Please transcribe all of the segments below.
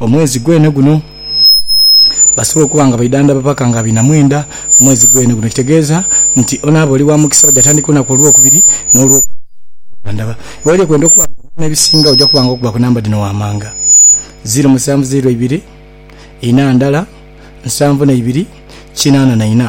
omwezi gwene guno basobole okuba nga baidhandhaba paka nga abiri na mwenda omwezi gwene guno. Kitegeeza nti onaaba oli wa mukisa baja tandika olunaku olwokubiri n'olwo dhandhaba. Gholi okwenda okuba nga onona ebisinga oja kuba nga okuba ku namba dhino wamanga, ziiro musanvu ziiro ibiri, ina ndala, nsanvu na ibiri, kinaana na ina.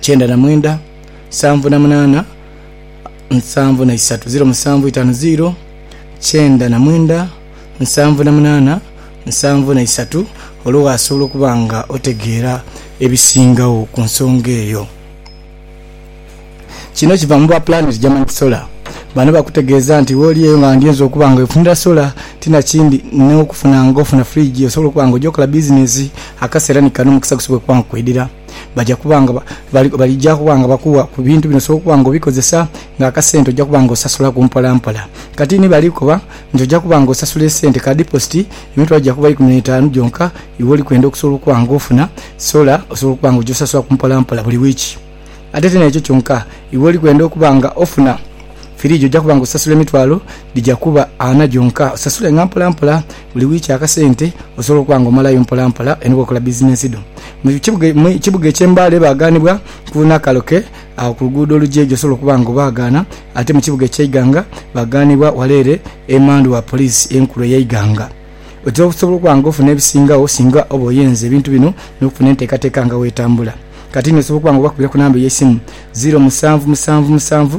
kyenda na mwenda nsanvu na munana nsanvu na isatu ziro musanvu itano ziro kyenda na mwenda nsanvu na munana nsanvu na isatu olwo wasobola okuba nga otegeera ebisingagho ku nsonga eyo. Kino kiva mu ba planet German solar bano bakutegeeza nti wooli eyo nga ndyoza okuba nga wefunira solar tinakindi n'okufuna nga ofuna fridge osobola okuba nga oja okola bizinensi akaseera ni kano omukisa gusobola okuba nga kwidhira. baja kuba nga balija kuba nga bakuwa ku bintu bino osobola okuba nga obikozesa nga akasente ojja kuba nga osasula ku mpola mpola. Kati ni bali kukoba nti ojja kuba nga osasula esente ka dipositi emitwalo gya kuba ikumi n'etaanu gyonka iwe oli kwenda okusobola okuba nga ofuna sola osobola okuba nga ogyosasula ku mpola mpola buli wiiki. Ate ti n'ekyo kyonka, iwe oli kwenda okuba nga ofuna firiigi ojja kuba nga osasula emitwalo dhija kuba ana gyonka osasule nga mpola mpola. Buli wiiki akasente osobola okuba nga omalayo mpolampola eno bw'okola bizinensi dho. Mu kibuga eky'e Mbale baagaanibwa ku Nakaloke agho ku luguudo olugya eyo gy'osobola okuba nga obaagaana, ate mu kibuga eky'e Iganga baagaanibwa wale ere emandhu wa poliisi enkulu ey'e Iganga. Otera okusobola okuba nga ofuna ebisingagho singa oba oyenze ebintu bino n'okufuna enteekateeka nga bw'etambula. Kati ni osobola okuba nga obakubira ku namba eyeisimu, ziiro musanvu musanvu musanvu,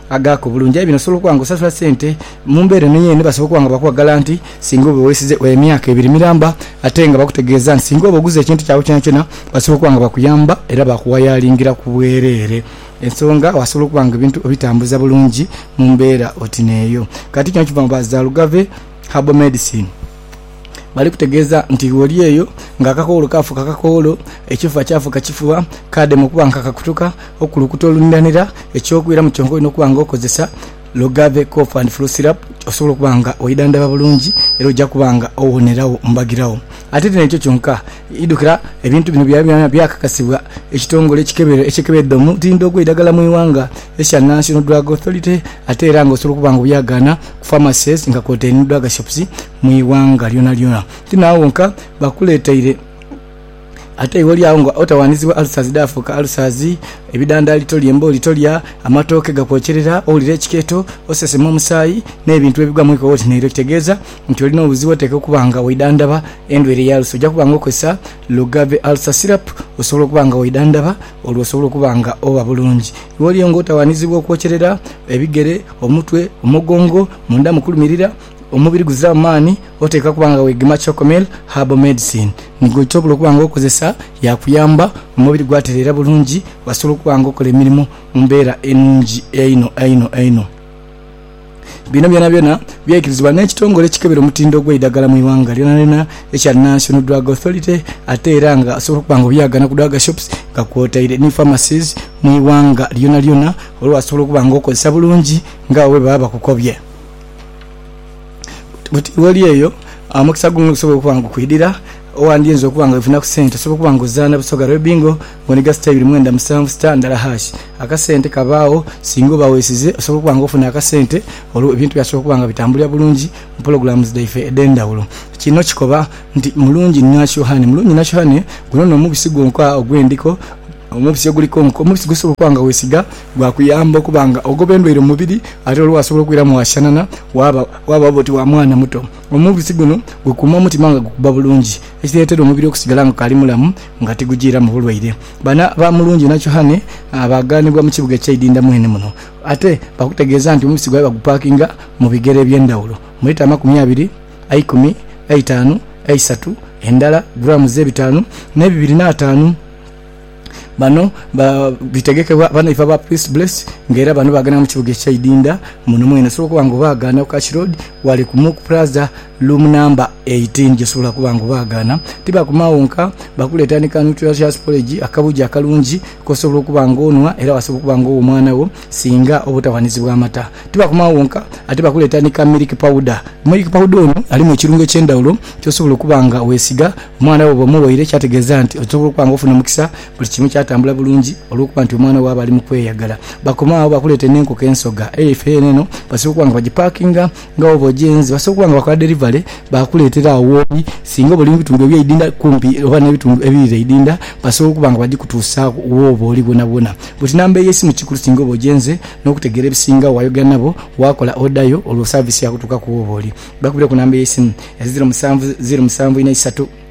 Agaako obulungi, aye bino osobola okuba nga osasula sente. Mu mbeera eno yeene basobola okuba nga bakuwa galanti singa oba weesize emyaka ebiri miramba ate nga bakutegeeza nti singa oba oguze ekintu kyabwe kyonakyona basobola okuba nga bakuyamba era baakuwayaalingira ku bwereere ensonga wasobola okuba nga ebintu obitambuza bulungi mu mbeera oti n'eyo. Kati kino kiva mu ba Zalugave Herbal Medicine. Bali kutegeeza nti gholi eyo ng'akakoolo kaafuuka kakoolo, ekifuba kyafuuka kifuba, kaadema okuba nga kakakutuka, okukulukuta oluniranira. Eky'okwiramu kyonka olina okuba nga okozesa Logave Cough and Flu Syrup osobola okuba nga wedhandhaba bulungi era oja kuba nga owonerawo mbagiragho. Ate ti n'ekyo kyonka, Idhukira, ebintu bino byayoleranira byakakasibwa ekitongole ekikebera ekikebera edhomu tindo ogweidagala mu ighanga ekya National Drug Authority ate era nga osobola okuba nga obyagaana ku pharmacies nga kwotaire ni drug shops mu ighanga lyonalyona. Ti naagho wonka, bakuleteire ate iwe oli agho nga otawandizibwa ulcers dhaafuuka ulcers, ebidandaali tolya, embooli tolya, amatooke gakwokyerera, owulira ekikeeto, osesema omusaayi n'ebintu ebigwa mu ikowa oti nairo kitegeeza nti olina obuzibu oteekwa okuba nga waidhandhaba endwaire ya alusa. Oja kuba nga okozesa Lugave Ulcer Syrup osobola okuba nga waidhandhaba olwo osobole okuba nga oba bulungi. Lw'oliyo nga otawaanizibwa okwokyerera, ebigere, omutwe, omugongo, munda mu kulumirira, omubiri guziramu maani, oteekwa kuba nga wegema Chocomel Herbal Medicine. Ni gwosobola okuba nga okozesa yaakuyamba omubiri gwatereera bulungi wasobola okuba nga okola emirimo mu mbeera enungi einho einho einho. Bino byonabyona byaikirizibwa n'ekitongole ekikebera omutindo gw'eidagala mu ighanga lyonalyona ekya National Drug Authority ate era nga osobola okuba nga obyagana ku drug shops nga kwotaire ni pharmacies mu ighanga lyonalyona olwasobola okuba nga okozesa bulungi nga agho bwebaba bakukobye. Bwoti bwoli eyo omukisa guno gusobola okuba nga gukwidhira, owandyinza okuba nga weefunaku sente osobola okuba nga ozaana Busoga Lwe Bingo Mw'enhiga sita ibiri mwenda musanvu sita ndala haashi. Akasente kabaagho singa oba weesize osobola okuba nga ofuna akasente olwo ebintu byasobola okuba nga bitambulira bulungi mu pologulaamuzi dhaife edh'endhawulo. Kino kikoba nti mulungi nasyohane. Mulungi nasyohane guno n'omubisi gwonka ogw'endhiko, omubisi oguliko nku, omubisi gw'osobola okuba nga weesiga gwakuyamba okuba nga ogoba endwaire mu mubiri ate olwo waasobola okwiramu waasianana waaba waaba oti wa mwana muto. Omubisi guno gukuuma omutima nga gukuba bulungi ekireetera omubiri okusigala nga gukaali mulamu. nga tigujiiramu bulwaire. Bana ba Mulungi na Chohane baaghanibwa mu kibuga eky'eidinda mwene muno. Ate baakutegeeza nti omubisi gwaibwe bagupaakinga mu bigere eby'endhawulo, mu lita amakumi abiri, eikumi, eitaanu, eisatu, endala grams ebitaanu n'ebibiri n'ataanu. Bano bitegekebwa banaifo aba Priest Bless nga era bano baaghanibwa mu kibuga eky'eidinda muno mwene. Osobola okuba nga obaaghaana ku Cash Road, ghale ku Mook Plaza. Lumu namba 18 gyesobola kuba nga obaagaana, tibakuma agho nka, bakuleetera ni ka nutritious porridge, akabugi akalungi k'osobola okuba nga onhwa era wasobola okuba nga ogha omwana wo singa oba otaghanizibwa amata. Tibakuma agho nka, ate bakuleetera ni ka milk powder. Milk powder ono alimu ekirungo eky'endhaghulo ky'osobola okuba nga weesiga omwana wo bwoba omughaire ekyategeeza nti osobola okuba nga ofuna omukisa buli kimu kyatambula bulungi olw'okuba nti omwana wo aba ali mu kweyagala. Bakoma agho bakuleetere n'enkoko ensoga. Aye ife eno basobola okuba nga bagipakinga. Nga oba ojenze, basobola okuba nga bakola derivale baakuleetera agho wooli. Singa oba oli mu bitundu eby'eidinda kumpi oba n'ebitundu ebiri n'eidinda, basobola okuba nga bagikutuusaagho wooba oli bwonabwona. Buti namba ey'esimu kikulu singa oba ojenze. N'okutegeera ebisingagho, waayogera nabo, waakola odayo, olwo saaviisi yaakutuukaku wooba oli. Bakubire ku namba ey'esimu, eziro musanvu, ziro musanvu, inha isatu.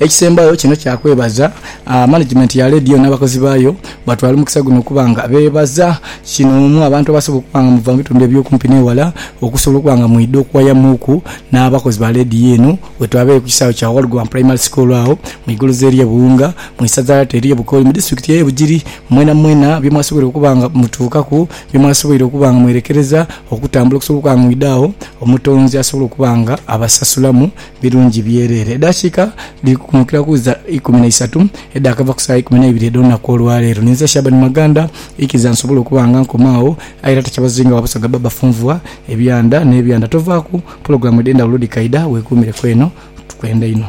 Ekisembayo kino kya kwebaza management ya leediyo n'abakozi baayo batwala omukisa guno okuba nga beebaza kinoomu abantu abasobola okuba nga muva mu bitundu eby'okumpi n'ewala okusobola okuba nga mwidha okuwayamuuku n'abakozi ba leediyo eno. Wetwabaire ku kisaawe kya Walgwan Primary School agho mu igoloza ery'e Buwunga mu isaza ery'e Bukooli mu disitulikiti ey'e Bugiri. Mwenamwena bye mwasoboire okuba nga mutuukaku, bye mwasoboire okuba nga mwerekereza okutambula okusobola okuba nga mwidha agho Omutonzi asobole okuba nga abasasulamu. birungi byereere. Edaakiika dhiri kukunhukira ku za ikumi na isatu edhaakava ku saa ikumi na ibiri edh'olunaku olwa leero. Ninze Shaban Maganda, ikiriza nsobole okuba nga nkoma agho, aye era takyabazinga wa Busoga Baba Funvua, Ebyanda n'ebyanda. Tovaaku, pulogulaamu edh'endhawulo dhikaidha, weekuumireku eno. Tukwenda inho.